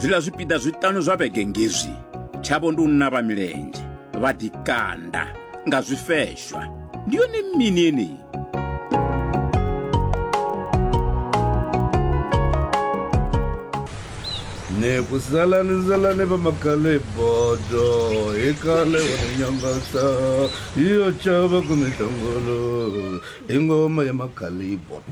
zwiḽa zwipiḓa zwiṱanu zwa vhege ngezwi tshavho ndi u navha milenzhe vha ḓikanda nga zwifeshwa ndi yone mini yeneyi ne ku salani salani va makale bodo hi kale wa nyangata yo chava ku mitangolo hi ngoma ya makale bodo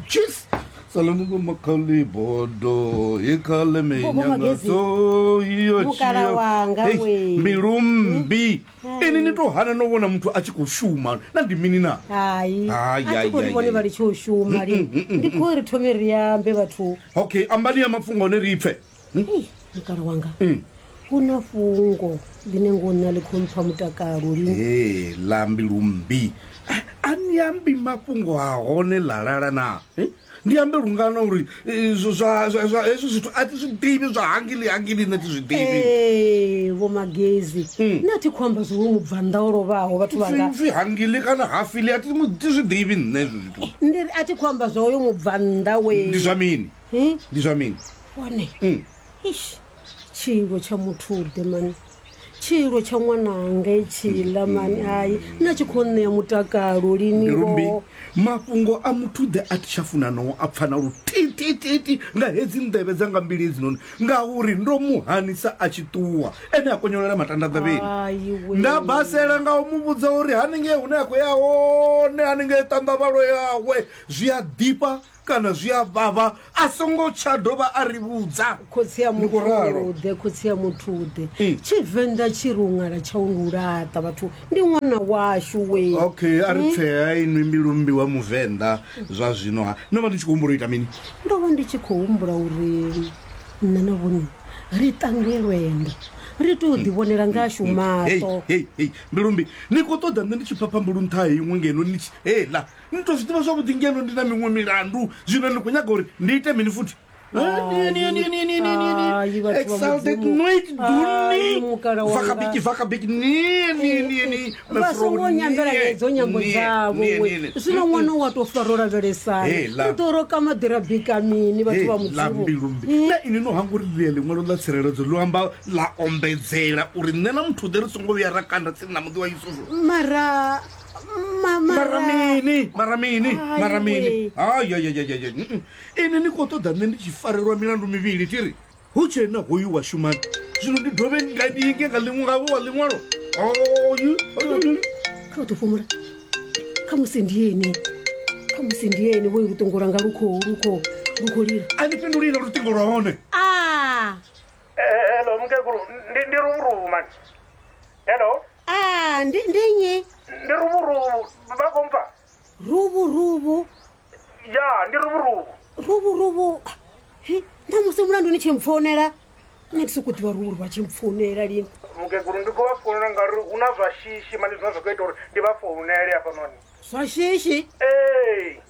Saloniko makhali bodo he khale me Bobo nyanga Magezi. so iyo Mukala wanga Hey, we. mbilu mmbi ini ni to hana no vhona muthu a tshi khou shuma na ndi mini na hayi Ai, a ai, si kuri ai, vhone ai. vha litsho u shuma lini ndi khou ri thome ri ambe vhathu okay ambani ya mapfunga one ri pfe Ei, mukala wanga Mm. hu na fhungo ḽine ngo nṋa ḽi khou mpfa mutakalo lini ee lambi lumbi a ni ambi mafhungo a hone ḽa lala na Eh? ndi ambe lungana uri eh, zwa- zwa- zwa- zwa- hezwi zwithu a thi zwi ḓivhi zwa hangili hangili nṋe thi zwi ḓivhi ee vho magezi Mm. nṋe a thi khou amba zwo vho mubvannḓa o lovhaho vhathu vhanga pfi hangili kana hafili a thi mu- thi zwi ḓivhi nṋe hezwi zwithu ndi ri a thi khou amba zwa uyo mubvannḓa we ndi zwa mini Hi? ndi zwa mini one Mm. ish tshilo tsha muthuḓe mani tshilo tsha ṅwananga etshiḽa mani hayi na tshi khou ṋea mutakalo lini mbirumbi ngoho. mafhungo a muthuḓe a thi tsha funa noo a pfana lutitititi nga hedzi nḓevhe dzanga mbili hedzinoni ngauri ndo mu hanisa a tshi ṱuwa ene a konyolela matanda ḓavheni Hayi we. nda basela nga u mu vhudza uri haningei hune a khou ya hone haningei ṱanḓavhalo yawe zwi a ḓifha kana zwi a vhavha a songo tsha dovha a ri vhudza khotsi ya Ndi khou ralo. muthude khotsi ya muthude Ee. tshivenḓa tshi ri u ṅala tsha u ndi u laṱa vhathu ndi ṅwana washu we okay a ri tsea inwi mbilumbi wa muvenḓa zwa zwino ha no vha ni tshi khou humbula u ita mini ndo vha ndi tshi khou humbula uri nṋe na vhone ri tange lwendo ri tou ḓivhonela ngashu Hey, maṱo hey, hey, mbilumbi ni khou ṱoḓa nṋe ndi tshi phapha mbulu nṱha ha iṅwe ngeno ni tshi hela ni to zwi ḓivha zwavhuḓi ngeno ndi na miṅwe milandu zwino ni khou nyaga uri ndi ite mini futhi vasongo nyambelaedzo nyambo dzavo zwino ṅwana wa to faro lavhelesana to roka maḓira bika mini vhathu vha mudzivobilumbi hmm? na ini no hanga uri ḽia ḽiṅwalo ḽa tsireledzo ḽo amba ḽa ombedzela uri nṋe na muthu ḓe ri songo vhuya ra kanda tsini na muḓi wa yusufu mara Ma- mara- mara mini mara mini Ai, mara mini wee. ayayayayay ini ni khou ṱoḓa nṋe ndi tshi farelwa milandu mivhili thi ri hu tshe na hoyu wa shumani zwino ndi dovhe nga ndi inge nga ḽiṅwe ngavho wa ḽiṅwalo oyu oyu kha u ḓo fhumula kha musi ndi ene kha musi ndi ene vhoyo luṱongo lwanga lu khou lu khou lu khou lila a ni fhindulile luṱingo lwa hone a Eh, hello mukegulu ndi ndi luvhuruvhu mani hello Ah, ndi ndi nnyi? ndi ruvhuruvhu vha khou mpfa Rubu rubu. ya ndi ruvhuruvhu Rubu rubu. Hi, ṋamusi mulandu ni tshi mpfonela. Nṋe ndi sokou ḓivha rubu rubu a tshi mpfonela lini. mukegulu ndi khou vha founela ngauri hu na zwa shishi mani zwine zwa khou ita uri ndi vha founele hafhanoni Zwa shishi. ee